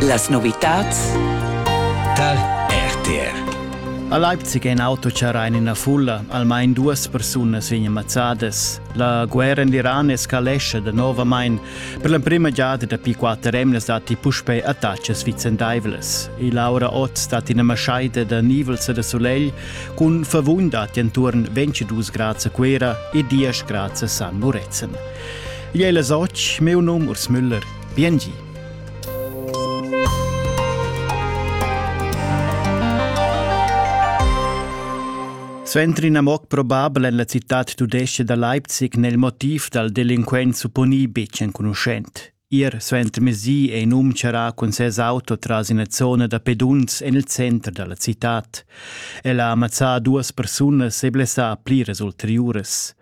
Las novitads dal RTR. A Leipzig è in auto charrà in ina fulla. Almain duas persunas vegnan mazzadas. La guerra in l'Iran escalesce da novamain. Per l'emprima giada dapi quatter emnas datti puspè attacas vicendaivlas. E Laura Ott stat ina maschaida da nivels e da solegl cun favun datti enturn 22 grads a Cuera e 10 grads a San Murezzan. Igl è las otg, meu num Urs Müller. Biengi. Suenter ina moc probabel en la citad tudesca da Leipzig nel motiv dal delinquent supponì betg enconuschent. Ir suenter mesi è in um charà cun ses auto tras ina zona da pedunz en il center da la citad. El ha ammazzà duas persunas e blessà pliras ulteriuras.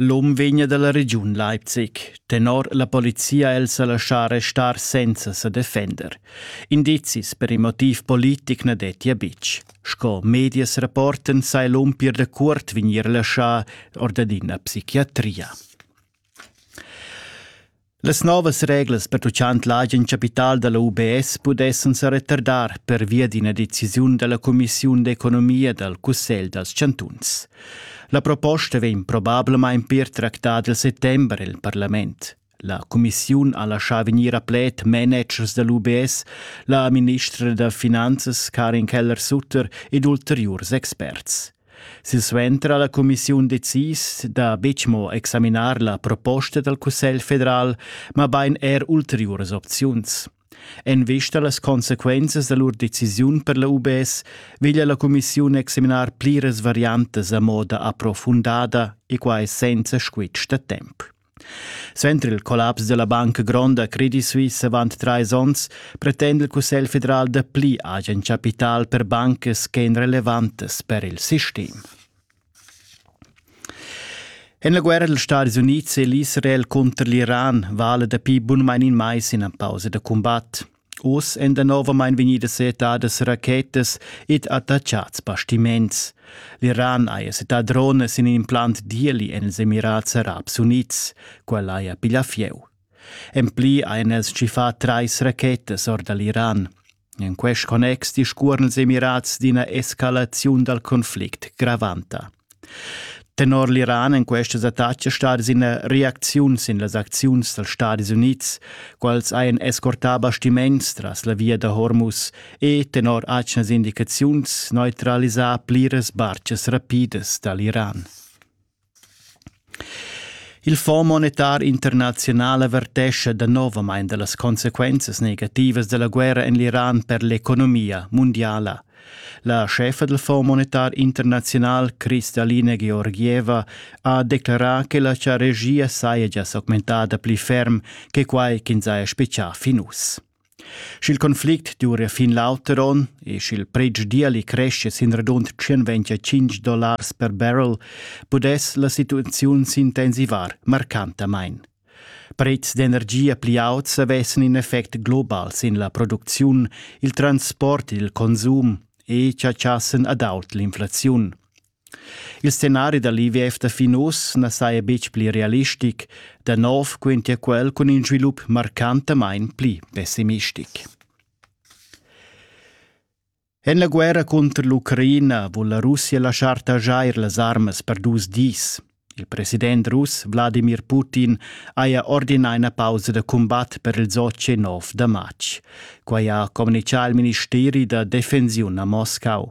L'um vegna dalla regiun Leipzig. Tenor la polizia el sa laschar restar senza sa defender. Indizis per in motiv politic na dettia betg. Sco medias rapporten sai l'um pir da cuort vegnir laschà or da ina psichiatria. Las novas reglas pertuchant l'agen chapital da la UBS pudessan sa retardar pervia d'ina decisiun da la cumissiun d'economia dal Cussegl dals chantuns. La proposta vegn probablamain pir tractada il settember il parlament. La cumissiun ha laschà vegnir a pled managers da l'UBS, la ministra da finanzas Karin Keller-Sutter ed ulteriurs experts. Silsuenter ha la cumissiun decis da betg mo examinar la proposta dal Cussegl federal, mabain er ulteriuras opziuns. En vista a las consequenzas da lur decisiun per la UBS veglia la cumissiun examinar pliras variantas a moda approfundada e quai senza squitsch da temp. Suenter il collaps dalla Banca Gronda Credit Suisse avant trais onns pretenda il Cussegl federal dapli agen capital per bancas ch'ein relevantas per il sistem. En la guerra dils Stadis Unids è l'Israel cunter l'Iran vala dapi bunmain in mais ina pausa da cumbat. Oz èn danovamein vegnidas seetadas rachetas ed attachats bastiments. L'Iran haja settà dronas in in implant d'ieli en ils Emirats Arabs Unids. Quella haja piglià fieu. En pli hajan els tschiffà trais rachetas or da l'Iran. En quest connex discuoran ils Emirats d'ina escalaziun dal conflict gravanta. Tenor l'Iran èn questas attacas stadas ina reacziun sin las acziuns dals Stadis Unids, quals hajan escortà bastiments tras la via da Hormuz e, tenor atgnas indicaziuns, neutralisà pliras bartgas rapidas da l'Iran. Il Fonds monetar internaziunal avertescha danovamain da las consequenzas negativas da la guerra en l'Iran per l'economia mundiala. La chefa del Fonds monetar internaziunal Kristalina Georgieva ha declarà che la regia saja gia s'augmentada pli ferm che quai ch'ins haja spiccà fin uss. Sch'il conflict duria fin l'auter onn e sch'il pretsch diali crescia sin radund 125 dollars per barrel, pudess la situaziun s'intensivar marcantamain. Prezs d'energia pli auts avessan in effect global sin la producziun, il transport e il consum e chatschassen ad aut l'inflaziun. Il scenari da l'IVF da fin uss na saja betg pli realistic, da nov quintia quel cun in svilup marcantamain pli pessimistic. En la guerra cunter l'Ucraina vul la Russia laschar taxair las armas per dus dis. Il president russ Wladimir Putin haja ordinà ina pausa da cumbat per il Sochi 9 da matg. Quai ha communitgà il ministeri da defensiun a Moscau.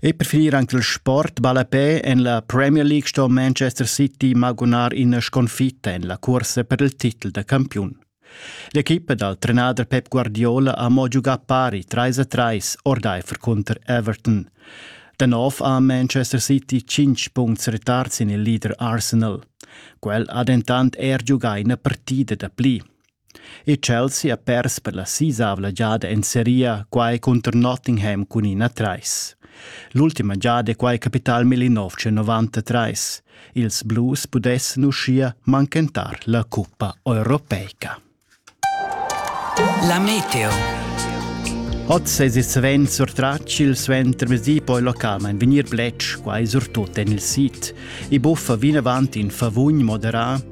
E per finir anc il sport ballapè en la Premier League sto Manchester City magunar ina sconfitta en la cursa per il titel da campiun. L'equipa dal trenader Pep Guardiola ha mo giugà pari 3 a 3 ordaifer cunter Everton. Da nov ha Manchester City 5 puncts retard sin il leader Arsenal. Quel ha dentant er giugà ina partida da pli. E Chelsea ha pers per la sisavla giada en seria quai cunter Nottingham cun ina trais. L'ultima giada è quai capità al 1993. Ils Blues pudessan uschia manchentar la cuppa europeica. La meteo. Oz es il savent surtratg il suentermezdi poi localmain vegnir bletsch quai surtut en il sit. I buffa vinavant in favugn moderà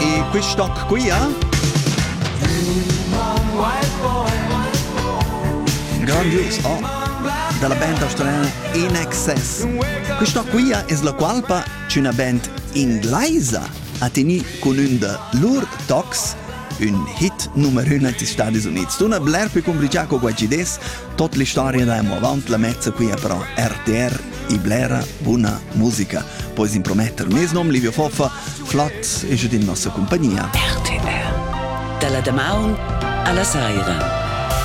E quist toc quia? Grandius, oh! dalla band australiana In Excess. Questa quia es la qualpa ch'üna band inglaisa ha teni cun ün da lur tocs, ün hit numero uno negli Stati Uniti. Tuna bler più complicato qua ci des, tot l'istoria da amo avant la mezza quia però RTR e blera buna musica. Pois imprometter mes nom Livio Foffa, Flat e giud in nossa compagnia. RTR. Dalla damaun alla saira.